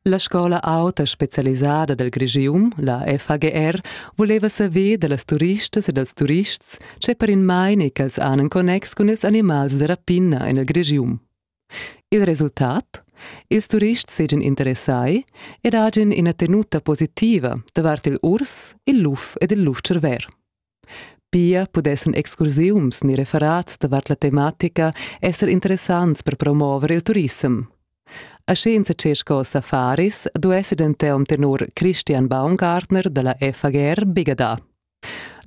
La scola auta specialisada del Grigium, la FAGR, voleva saver dallas turistas e dals turists, che per in maine ch'els han in connex cun ils animals de rapina in il Grigium. Il resultat? Ils turists seigien interessai ed hagien ina tenuta positiva davart il urs, il luf ed il luf-cerver. Pia pudessan excursiums ni referats davart la tematica esser interessants per promover il turissem. Aschi insatgè sco safaris duessi denton tenor Christian Baumgartner dalla FAGR bigada.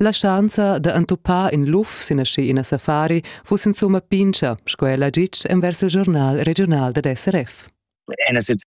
La schanza da entupar in luf sin aschi ina safari fuss insumma pincha, sco ella gitg envers il giornal regional dad SRF. Einerseits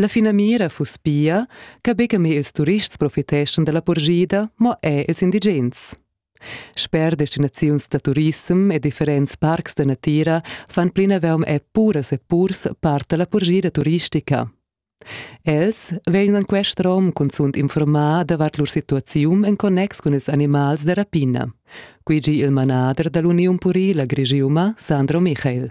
La finamira fuss pia, che buca mo ils turists profiteschan dalla purschida, mo er ils indigens. Sper destinaziuns da turissem e differents parcs da natira fan plinavaum er puras e purs part da la purschida turistica. Els vegnan quest rom cunzunt informar davart lur situaziun en connex cun ils animals da rapina. Qui gi il manader dall'Uniun Purila Grigiuma, Sandro Michael.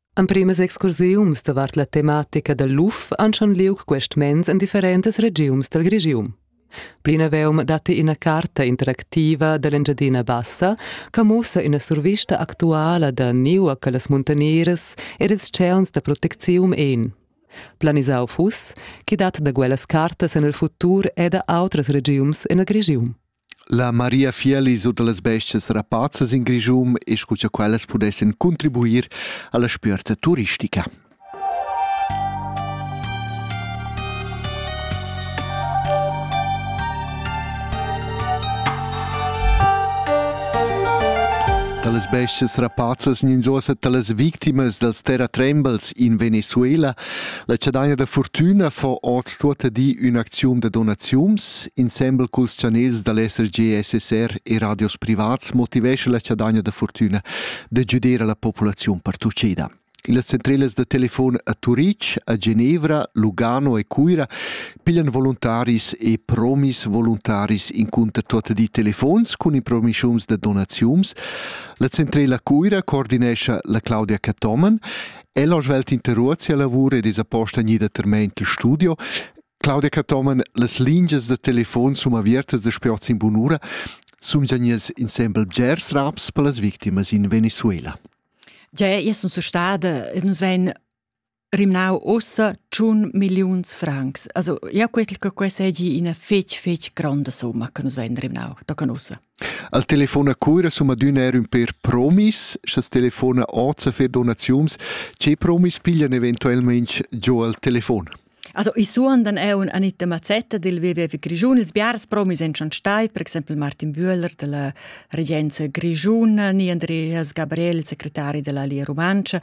Emprimas excursiuns davart la tematica dal luf han schon liug quest mens en differentas regiums dal Grigium. Plinaveume datti ina carta interactiva dall'Engiadina Bassa che mussa ina survista actuala da niua che las muntanieras ed ils tscheuns da proteczium ein. Planisau fuss, chi dat da quellas cartas en il futur e da outras regiums en il Grigium. La Maria Fieli sut las bestias rapazzas in Grischun e scu cha quellas pudessan contribuir alla spierta turistica. Dalas bestias rapazzas nin zosa talas victimas dals terratrembels in Venezuela La chadaina da fortüna fo hoz tuotta di ün'acziun da donaziuns. Insembel culs chanels da l'SRG, SSR e radios privats motivescha la chadaina da fortüna da güder a la populaziun partucheda. Las centrelas da telefon a Turitg, a Genevra, Lugano e Cuira piglian voluntaris e promis voluntaris incunter tuotta di telefons cun impromischiums da donaziuns. La centrela Cuira coordinescha la Claudia Cathomen El ha svelt interruot sia lavur ed es aposta gnida termaint il studio. Claudia Cathomen, las lingias da telefon sun avertas da spiots in bunura, sun già gnias insembel bgers raps per las victimas in Venezuela. Già, io sun stada e nus vain rimnau ussa tschun milliuns francs. Also, ja quetl che questa egi ina fetg, fetg gronda somma che nus vain rimnau, da canussa. Al telefon a Cuira sun adüna eir ün pêr promis, scha's telefona hoz a fer donaziuns. Che promis piglian eventuelmaing giò al telefon? Also i suondan eau an Anita Mazzetta del WWF Grischun. Ils biars promis en schon stai, per exempel Martin Bühler della regenza grischuna, ni Andreas Gabriel, il secretari della Lia Rumantscha.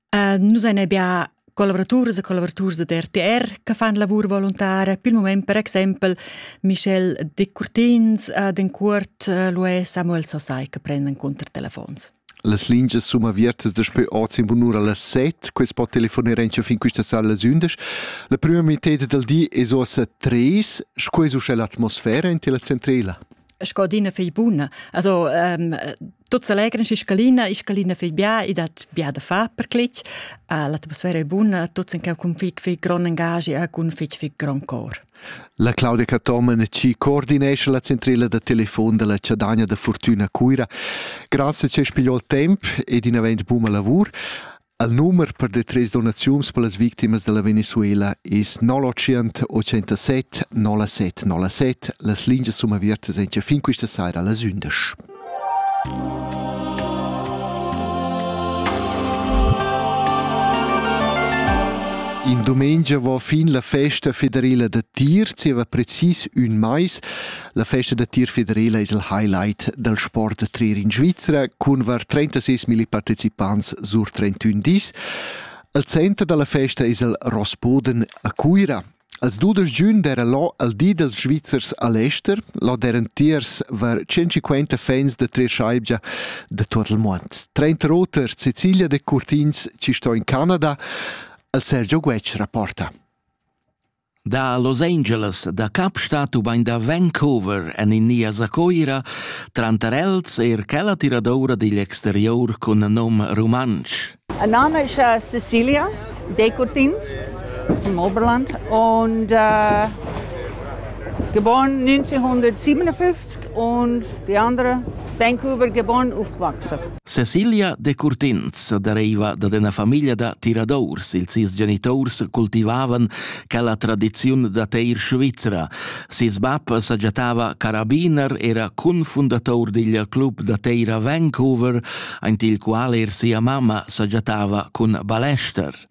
Uh, nus ein bia collavraturs e collavaturs da RTR che fan lavur volontaria. Per il moment, per exempel, Michel Decurtins ad en cuort uh, lo è Samuel Sosai che prende telefones. Las lingias sono apertas daspö oz in bunura las 7, quest po telefonare anche fin questa sala las 11. La prima metà del di è ossa 3, scues usce l'atmosfera in tela centrela. Sco dina fei buna. Also, um, Tuts allegran schi scalina, e scalina fai bia e dat bia da far per clic. Uh, l'atmosfera è buna, tuts in cau cun fic fic gran engagi e cun fic fic gran cor. La Claudia Cattomen ci coordinesce la centrela da telefon della Ciadania da Fortuna Cuira. Grazie che spiegò il temp ed in avent buma lavur. Il numer per detrais donaziuns per las victimas da la Venezuela es 080 87 07 07. Las lingias sun avertas incha fin quista saira las ündesch. In domenica va fin la festa federala da tir zieva precis ün mais. La festa da tir federala es il highlight dal sport da trir in Svizra cun var 36 milli participants sur 31 dis. Il center da la festa es il Rossboden a Cuira. Als 12 giugn d'era lo al di dels Svizzers a Leicester, lo d'eran tiers var 150 fans da trir schaibgia da tot il mond. 30 roter Sicilia de Curtins ci sto in Canada, al Sergio Guetsch rapporta. Da Los Angeles da Kapstadt ubain da Vancouver en India sa Coira, tranter els er quella tiradoura digl exterior cun nom rumantsch. Ein name ist äh, Cecilia Decurtins from Oberland und äh, geboren 1957 und die andere Vancouver geboren, aufgewachsen. Cecilia Decurtins deriva dad ina famiglia da tiradors. Ils sis genitors cultivavan quella tradiziun da teir svizra. Ses bab sagiatava carabiner, era confundator digl club da teir a Vancouver, aint il qual er sia mamma sagiatava cun balester.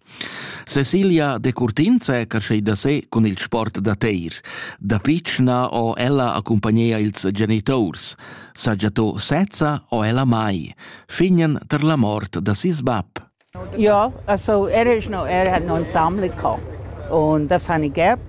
Cecilia Decurtins è creschida se cun il sport da teir. Da pitschna ho ella accompagnia ils genitors. Saja to sezza o ella mai, fignen ter la mort da sis bab. Ja, also er ist noch, er hat noch ein Sammler gehabt. Und das habe ich gehabt.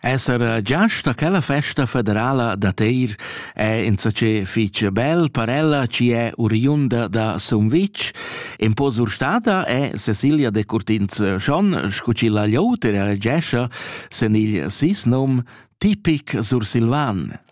Esser giast a quella festa federala da Teir è insatge fitg bel per ella chi è oriunda da Sumvitg. In po surstada è Cecilia de Curtins-Schon, scu chi la gliouter elegescha sen il sis nom tipic sursilvan.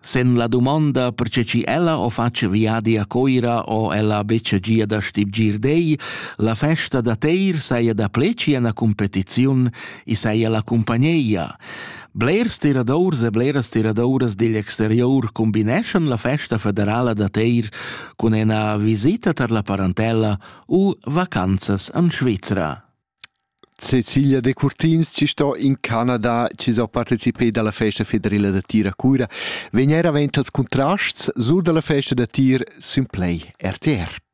Sen la domanda perche chi ella ho fatg viadi a Coira ho ella betg gia da stibgir dei, la festa da teir saja da pleci ena competiziun, i saja la cumpagneia. Blers tiradors e bleras tiradoras digl exterior combineschan la festa federala da teir cun ena visita tar la parentella u vacanzas an Svizra. Cecilia Decurtins chi sto in Canada, chi s'ho partecipeda alla festa federela da tir a Cura, vegn eir avent als Contrasts sur da la festa da tir sün Play RTR.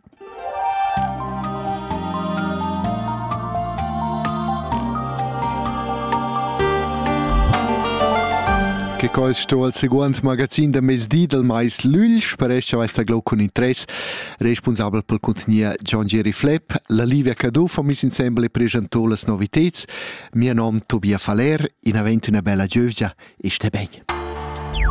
Che quel sto al seguand magazin da mezdi dal mais Lügl, sparescha vesta glo cun interess responsabel pel cuntgnier John Jerry Flepp, la Livia Caduff ho miss insembel e preschantò las noviteds. Mia nom Tobia Faller, in avent üna bella giövgia e sté ben.